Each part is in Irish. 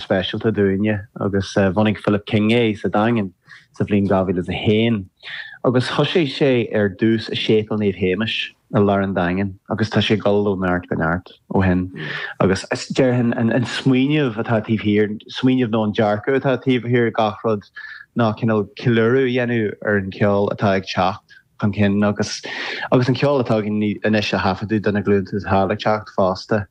speisialta dúinne agus bhunaigh Philip King é sa Daingean sa bhliain 2001 agus thosaigh sé ar dtús i Séipéal Naomh Séamas i lár an Daingin agus tá sé ag dul ó neart go neart ó shin agus déarfainn an smaoineamh atá taobh thiar, smaoineamh nó an dearcadh atá taobh thiar de gach rud ná cineál ceiliúradh a dhéanamh ar an gceol atá ag teacht chun cinn agus agus an ceol atá againn anois a thaifeadadh do na glúnta atá ag teacht fosta.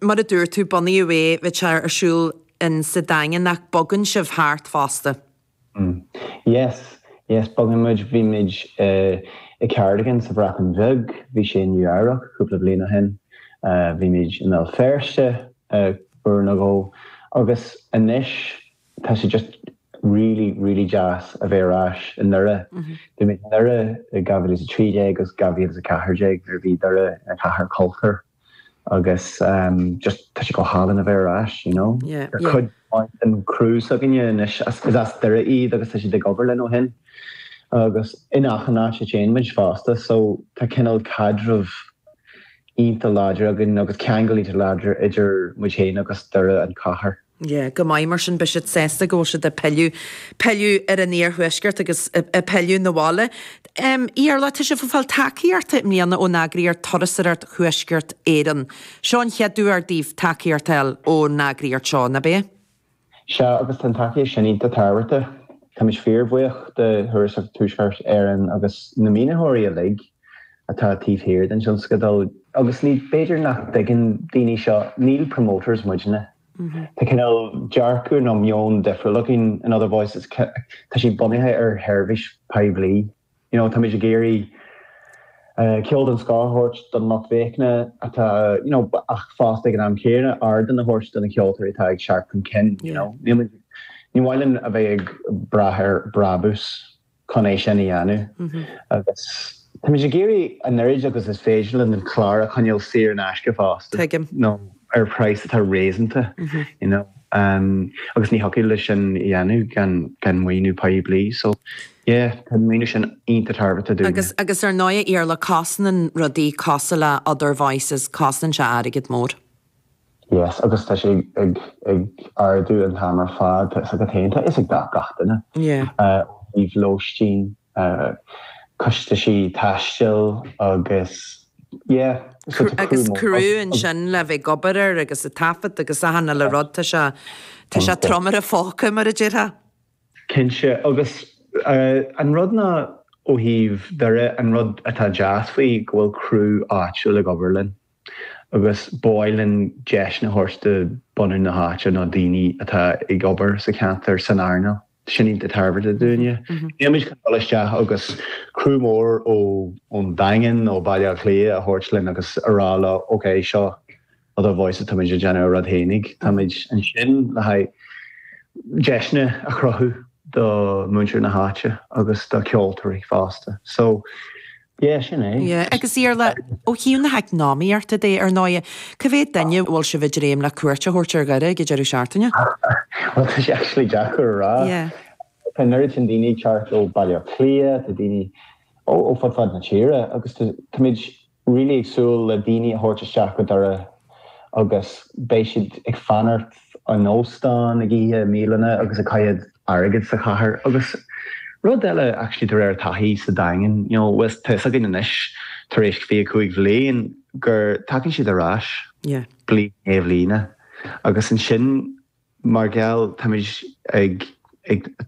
Mar a dúirt tú, bunaíodh é, bíonn sé ar siúl in sa Daingean ach bogann sibh thart fosta. Mm. Yes, yes, bogann muid, bhí muid i Cardigan sa Bhreatain Bheag, bhí sé i Nua-Eabhrac cúpla bliain ó shin, bhí muid i mBéal Feirste uair nó dhó agus anois tá sé just really, really deas a bheith ar ais i nDoire. Bhí muid i nDoire i 2013 agus 2014 nuair a bhí Doire ina chathair cultúir. agus just tá sé go hálainn a bheith ar ais, you know. Yeah, yeah. Cuid den chriú s'againne anois, is as Doire iad agus tá siad ag obair linn ó shin. Agus in achan áit a téann muid fosta, so tá cineál caidreamh iontach láidir againn agus ceangal iontach láidir idir muid féin agus Doire an chathair. Yeah, go maith mar sin, beidh siad sásta go bhfuil siad ag pilleadh, pilleadh ar an iarthuaisceart agus ag pilleadh 'na bhaile. Em, Iarlaith, tá sibh ag fáil tacaíochta i mbliana ón eagraíocht Turasóireacht Thuaisceart Éireann. Seo an chéad uair daoibh tacaíocht a fháil ón eagraíocht seo, nab ea? Sea, agus tá an tacaíocht sin iontach tábhachtach. Táimid fíorbhuíoch de Thurasóireacht Thuaisceart Éireann agus na maoinitheoirí uilig. atá taobh thiar den tionscadal. Agus ní, b'fhéidir nach dtuigeann daoine seo, ní promoters muidne. Tá cineál dearcadh nó meon difriúil againn in Other Voices, tá sé bunaithe ar sheirbhís phoiblí. You know, táimid ag iarraidh ceol den scoth a thabhairt don lucht féachana atá, you know, ach fosta ag an am chéanna ardán a thabhairt do na ceoltóirí atá ag teacht chun cinn, you know. Ní mian linn a bheith ag brath ar brabús. chun é sin a dhéanamh agus táimid ag iarraidh an oiread agus is féidir linn an clár a choinneáil saor in aisce fosta nó ar praghas atá réasúnta you know agus ní thiocfadh linn sin a dhéanamh gan maoiniú poiblí so yeah tá an maoiniú sin iontach tábhachtach dúinn. Agus ar ndóigh, a Iarlaith, cosnaíonn rudaí, cosúil le Other Voices, cosnaíonn sé airgead mór. Yes agus tá sé ag ag ardú an t-am ar fad tá fhios agat féin tá fhios ag gach duine ó thaobh lóistín costaisí taistil agus yeah so tá criú mór. Criú ansin le bheith ag obair air agus ag taifead agus achan uile rud tá sé tá sé trom ar an phóca mar a déarfá. Cinnte agus an rud ná ó thaobh Dhoire an rud atá deas faoi go bhfuil criú áitiúil ag obair linn. agus ba mhaith linn deiseanna a thabhairt do bhunadh na háite nó daoine atá ag obair sa cheantar san earnáil sin iad a thabhairt do dhaoine. Nílimid chun dul isteach agus criú mór ó ón Daingean nó Baile Átha Cliath a thabhairt linn agus a rá leo ok seo other voices táimid ag déanamh ár rud fhéinig. Táimid ansin le haghaidh deiseanna a chruthú do múinteoirí na háite agus do cheoltóirí fosta. So, Yeah, sin é. Yeah, agus Iarla, ó thaobh na heacnamaíochta de ar ndóighe, cá mhéad duine a bhfuil sibh ag dréim le cuairt a thabhairt ar Dhoire ag an deireadh seachtaine? Bhuel, tá sé actually deacair a rá. Yeah. Tá an oiread sin daoine ag teacht ó Bhaile Átha Cliath, tá daoine ó fud fad na tíre agus tá muid really ag súil le daoine a thabhairt isteach go Doire agus beidh siad ag fanacht in óstán, ag ithe i mbialanna agus ag caitheamh airgid sa chathair agus rud eile actually de réir taithí sa Daingean you know bhfuil, tá a fhios againn anois tar éis 25 bliain gur tagann siad ar ais yeah. bliain i ndiaidh bliana agus ansin Mar gheall, táimid ag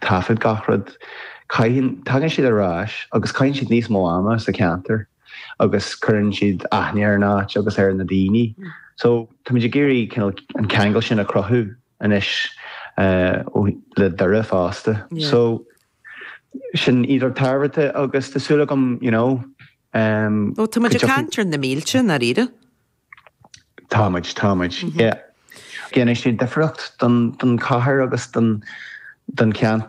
taifead gach rud. Caitheann, tagann siad ar ais agus caitheann siad níos mó ama sa cheantar agus cuireann siad aithne ar an áit agus ar na daoine. So táimid ag iarraidh cineál an ceangal sin a chruthú anois le Doire fosta. So sin iontach tábhachtach agus tá súil agam, you know, go dtiocfaidh. Ó, táimid ag caint ar na mílte, i ndáiríre. Táimid, táimid, yeah. Déanann sé difriocht do don chathair agus don ceantar.